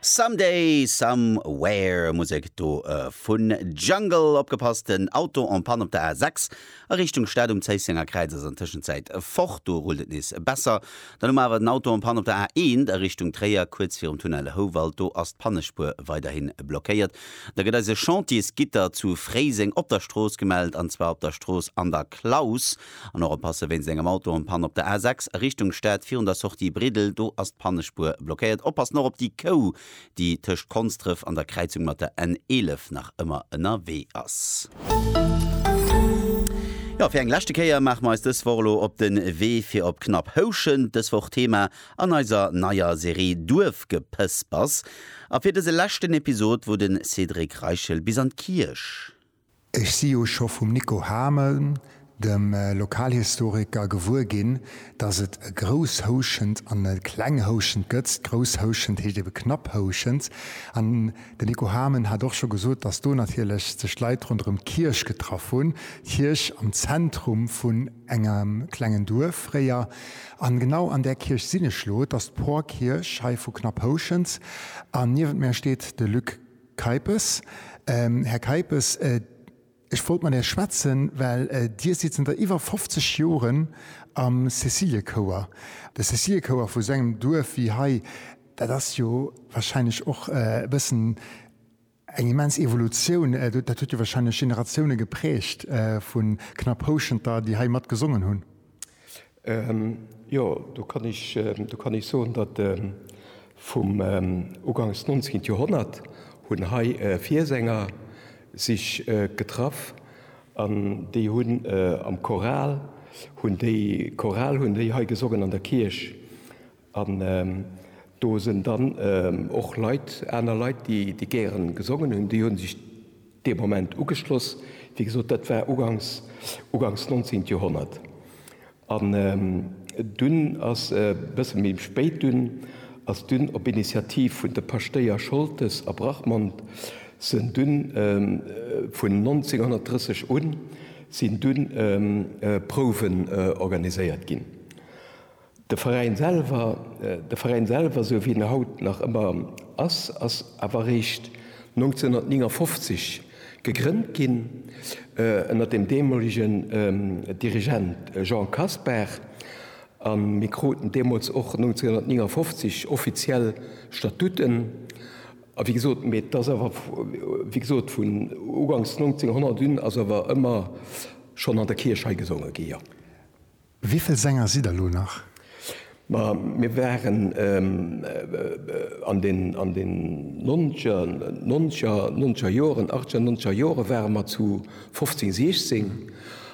Someday, Somewhere, Musek do vun Jungle. Opgepasst, den Auto en panne op der A6 a Richtung Stad um Zéissenger Kräiz ass an Tëschenzäit fort, do rullt et nees besser. Dann hu mer awer den Auto en panne op der A1 a Richtung Tréier, kuerz virum Tunnel Houwald, do ass d'Pannespuer weiderhi blockéiert. Da gëtt eis e Chantiers-Gitter zu Fréiseng op der Strooss gemellt, an zwar op der Strooss An der Klaus. An och oppasse wéinst engem Autopann op der A 6 a Richtung Stad virun der Sortie Bridel, do ass d'Pannespuer blockéiert. Oppassen och op déi Kou, déi tëscht Konsdref an der Kräizung mat der N 11 nach ëmmer ënnerwee ass. Jo, fir eng leschte Kéier maache mer eis dës Woch elo op de Wee fir op Knapp Houschent, dës Woch Thema an eiser neier Serie Duerfgepëspers a fir dëse leschten Episod, wou de Cédric Reichel bis an d'Kierch, Ech si jo scho vum Nico Hamel, dem Lokalhistoriker, gewuer ginn, datt et e Grousshouschent an e Klenghouschent gëtt. Grousshouschent heescht ebe Knapphouschent. An den Nico Hamel hat och scho gesot, datt do natierlech sech d'Leit ronderëm d'Kierch getraff hunn, d'Kierch am Zentrum vun engem klengen Duerf fréier. An genau an där Kierch sinn ech elo. Et ass d'Porkierch hei vu Knapphouschent. An niewent mär steet de Luc Keipes, Här Keipes, ech wollt mat Är schwätzen, well Dir sidd zënter iwwer 50 Joren am Cäciliekouer. De Cäciliekouer vu sou engem Duerf wéi hei, dat ass jo wahrscheinlech och e bëssen eng immens Evolutioun. Dat huet jo wahrscheinlech Generatioune geprägt vu Knapphouschenter, déi hei mat gesongen hunn. Jo, do kann ech, do kann ech soen, datt vum ugangs d'nonzegent Joerhonnert hunn hei Viersänger sech getraff an déi hunn am Choral hunn déi Choral hunn déi hei gesongen an der Kierch An do sen dann och Leit, aner Leit, déi gären gesongen hun, déi hun sech deem Moment ugeschloss. Wéi gesot, dat war ugangs, ugangs 19. Joerhonnert. An dunn ass e bësse méi spéit, dunn ass dunn op Initiativ vun de Paschtéier Scholtes a Brachmond, sen dunn vun 1930 un, sin dunn Prouwen organiséiert gin. De Veräin selwer, de Veräin selwer esou wéi en haut nach ëmmer ass, ass awer eréischt 1959 gegrënnt ginn ënnert dem deemolegen Dirigent Jean Kasper a mir kruten deemools och 1959 offiziell Statuten a wéi gesot, mee d'ass awer wéi gesot vun ugangs 1900 un ass awer ëmmer schonn an der Kierch hei gesonge gi, jo. Wéivill Sänger sidd der lo nach? Ma mir waren an den an den nonzeger nonzeger nonzeger Joren achtzeger nonzeger Jore ware mer zu fofzéng siechzéng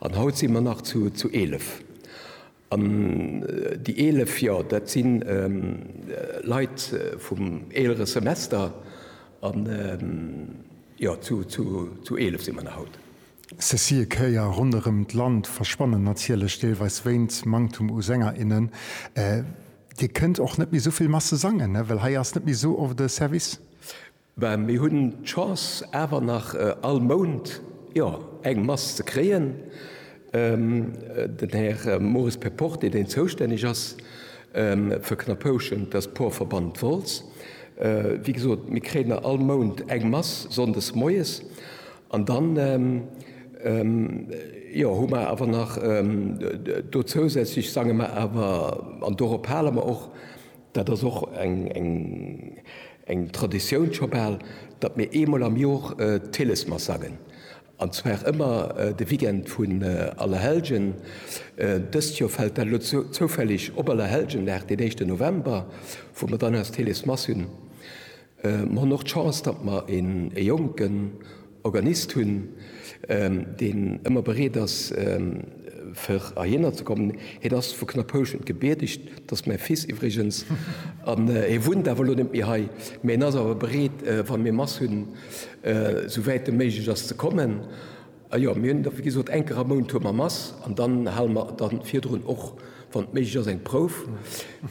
an haut si mer nach zu zu eelef. An déi eelef, jo dat si Leit vum eelere Semester an jo zu zu zu eelef si mer nach haut. Cécile Kéier, Ronderëm d'Land verschwannen natierlech deelweis wéint Manktum u Sänger, innen. Dir kënnt och net méi esou vill Masse sangen, well hei ass net méi esou oft e Service? Ben, mir hunn d'Chance awer nach all Mount, jo, eng Mass ze kréien. Den Här Maurice Perporté, deen zoustänneg ass fir Knappouschen, dat ass d'Porverband Wolz, wéi gesot, mir kréien nach all Mount eng Mass sonndes moies. An dann, jo, hu mer awer nach do zousätzlech, sange mer awer, an dorop hale mer och, dat ass och eng Traditioun scho bal, datt mir eemol am Jor d'Hillesmass sangen, an zwar ëmmer de Weekend vun Allerhellgen. Dëst Jor fält dat elo zoufälleg op Allerhellgendag, den éischte November, wou mer dann eis d'Hillesmass hunn. Mer hunn och d'Chance, datt mer e jonken Organist hunn, deen ëmmer bereet ass, fir heihinner ze kommen. Hien ass vu Knapphouschent gebiertegt, dat ass mäi Fils iwwregens, an e wunnt awer elo net méi hei. Mee en ass awer bereet, wa mir Mass hunn, esou wäit et méiglech ass, ze kommen. A jo, mir hunn da wéi gesot eng Kéier am Mount hu mer Mass an dann hale mer da virdrun och, wann et méiglech ass, eng Prouf,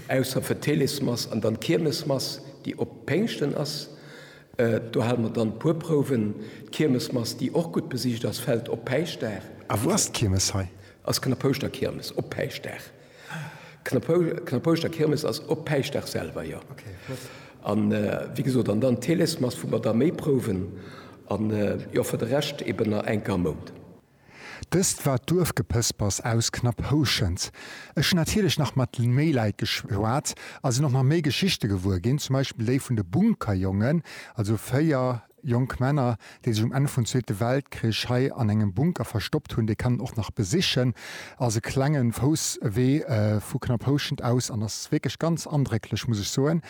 ausser fir d'Helesmass an dann d'Kiermesmass, déi op Péngschten ass. Do hale mer dann e puer Prouwen. D'Kiermesmass, déi och gutt besicht ass, fält op Päischtdag. A wou ass d'Kiermes hei? Ass Knappouschterkiermes op Päischtdag. D'Knappouschter Kirmes ass op Päischtdag selwer, jo. An wéi gesot, an dann d'Theles-Mass, wou mer da méi prouwen. An jo, fir de Rescht eben nach eng Kéier am Mount. Dëst war d'Duerfgepëspers aus Knapphouschent. Ech hunn natierlech nach mat méi Leit geschwat a sinn och nach méi Geschichte gewuer ginn, zum Beispill déi vun de Bunkerjongen, also 4 Jonk Männer, déi sech um Enn vun Zweete Weltkrich hei an engem Bunker verstoppt hunn, déi kann een och nach besichen. Ass e klenge Fousswee vu Knapphouschent aus an ass wierklech ganz andrécklech, muss ech soen.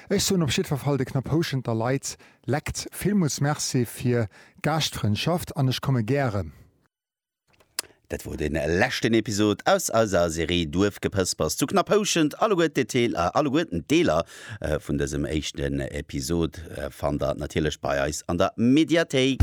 Ech soen op jiddwer Fall de Knapphousschenter Leit lekt villmools Merci fir d'Gaaschtfrëndschaft an ech komme gäre. Dat wor den leschten Episod aus eiser Serie Duerfgepëspers zu Knapphouschent. Alleguer d'Detail, alleguer d'Deeler vun dësem éischten Episod fannt der natierlech bei eis an der Mediathéik.